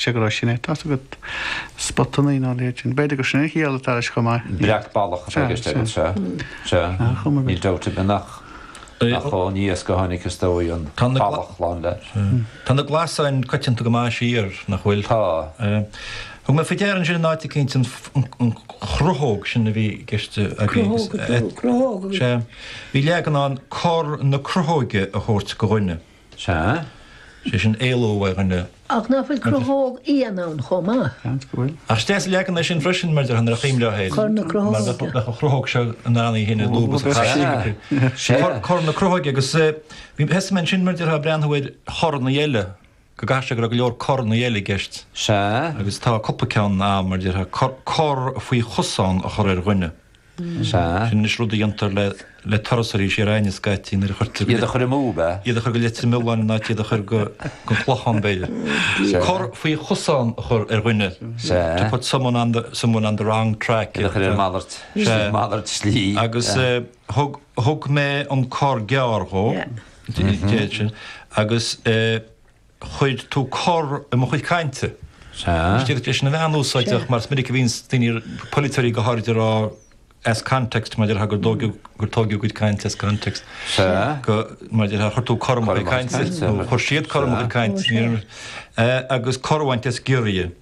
sé gurb shin é. Tá's agat spotannaí nó a leithéid sin. B'fhéidir gur sin an chiall atá leis chomh maith. Breac ballach atá i gceist agat. Sea. Sea. Níl dabht ar bith nach nach ón iasc a tháinig is dóigh an ballach lán le. Tá na glasáin coitianta go maith siar, nach bhfuil? Tá. Thug mé faoi deara ansin in áit eicínt an chrothóg sin a bhí i gceist agat. Sea. Bhí leagan ann cor na crothóige a thabhairt go dhuine. Sea, sé sin éalú uaidh dhuine. Ach ná fuil crothóg fhiáin ann chomh maith? Seans go bhfuil. Ach is deas an leagan é sin freisin, mar déarfá, nuair a chuimhneofá air. Cor na crothóige. Mar bheadh an chrothóg seo in ann í fhéin a lúbadh is a chaitheamh. Sea. Sea. Cor na crothóige agus bhí, thosaigh mé ansin mar déarfá, ag breathnú ar choranna eile, go gcaithfidh sé go raibh go leor coranna eile i gceist. Sea. Agus tá cúpla ceann ann mar déarfá, cor faoi chosán a chur ar dhuine. Sea. Sin anois rud a dhéantar le turasóirí siar a'inn scaití nuair a chuirtear go. Iad a chur amú, ab ea? Iad a chur go Leitir Mealláin in áit iad a chur go Clochán, b'fhéidir. Sea. Cor faoi chosán a chur ar dhuine. Sea. To put someone on the, someone on the wrong track. Iad a chur ar malairt, malairt slí. Agus thug, thug mé an cor gearr dhó, deir sé, agus eh. chuir tú cor i mo chuid cainte. Sea. Is é sin a bheadh an-úsáideach mar is minic a bhíonns daoine, polaiteoirí go háirid, ag rá as context, mar déarfá, gur tógadh a gcuid cainte as context. Sea. Go, mar déarfá, chuir tú cor i mo chuid cainte, nó chuir siad cor i mo chuid cainte, agus cor a bhaint as giorria.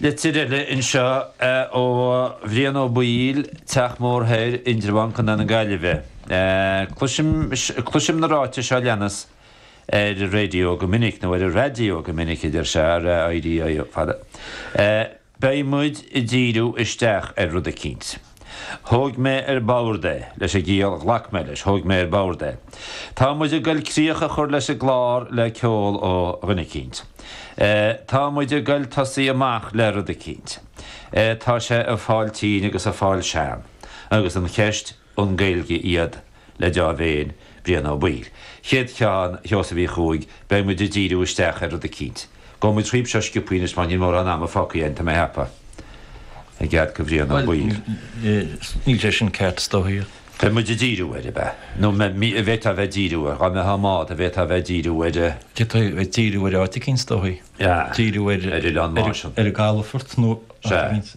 Litir eile anseo ó Bhrian Ó Baoill, Teach Mór Thoir, Indreabhán, Co. na Gaillimhe. Cloisim, cloisim na ráitis seo leanas ar an raidió go minic, nó ar an raidió go minic a deir sé, RAIDIO, fada. Beidh muid ag díriú isteach ar rud eicínt. Thóg mé ar bord é, leis an gciall ghlac mé leis, thóg mé ar bord é. Tá muid ag goil críoch a chur leis an gclár le ceol ó dhuine eicínt. Tá muid ag goil tosaí amach le rud eicínt. Tá sé ag fáil tinn agus ag fáil sean. Agus an cheist, an Gaeilge iad le dea-mhéin, Brian Ó Baoill. Chéad cheann, a Sheosaimh Uí Chuaig, Beidh muid ag díriú isteach ar rud eicínt. Gabhfaidh muid thríothu seo sciopthaí anois mar níl mórán ama fágtha againn, tá mé a cheapadh. I gcead go Bhrian Ó Baoill. Bhuel, níl sé sin ceart, is dóichí. Beidh muid ag díriú air, ab ea? Nó bhféadfá a bheith ag díriú air, dhá mbeadh am agat, bhféadfá a bheith ag díriú air. D'fhéadfá a bheith ag díriú air áit eicínt, is dóichí. Díriú air. Ar Oileán Máisean. Ar an gcalafort nó áit eicínt.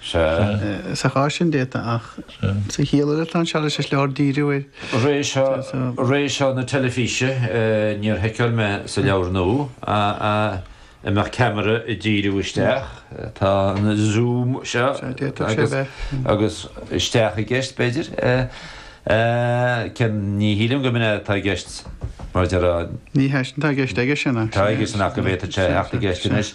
Sea. Sa chás sin déanta, ach sa chiall eile tá an sealbhas. Is leor díriú air. Ré seo, ré seo na teilifíse, níor sheiceáil mé sa leabhar nua an mbeadh ceamara ag díriú isteach, tá an Zoom seo agus isteach i gceist b'fhéidir, cén, ní shílim gurb in atá i gceist mar a déarfá. Ní hé sin atá i gceist aige sin. Tá aige sin ach go bhféadfadh sé a theacht i gceist anois.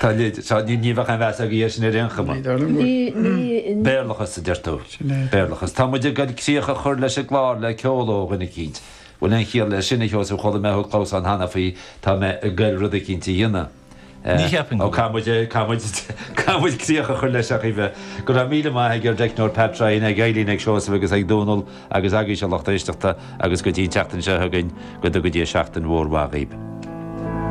Tá leid, tá, ní, ní bheadh aon mheas agam air sin ar aon chuma. Ní, dar liom go bhfuil. Ní, ní, ní. Béarlachas, a deir tú. Sin é. Béarlachas. Tá muid ag goil críoch a chur leis an gclár le ceol ó dhuine eicínt. Bhfuil aon chiall leis sin, a Sheosaimh? Chuala mé thú ag clamhsán cheana faoi tá mé ag goil rud eicínt a dhéanamh. Ní cheapaim go bhfuil. Eh, á, caithfidh muid, eh, caithfidh muid, caithfidh muid críoch a chur leis, a Chaoimhe. Go raibh míle maith ag ár dteicneoir Pat Ryan, ag Eileen, ag Seosamh agus ag Dónall agus agaibhse, a lucht éisteachta, agus go dtí an tseachtain seo chugainn, go dtuga Dia seachtain mhór mhaith dhaoibh.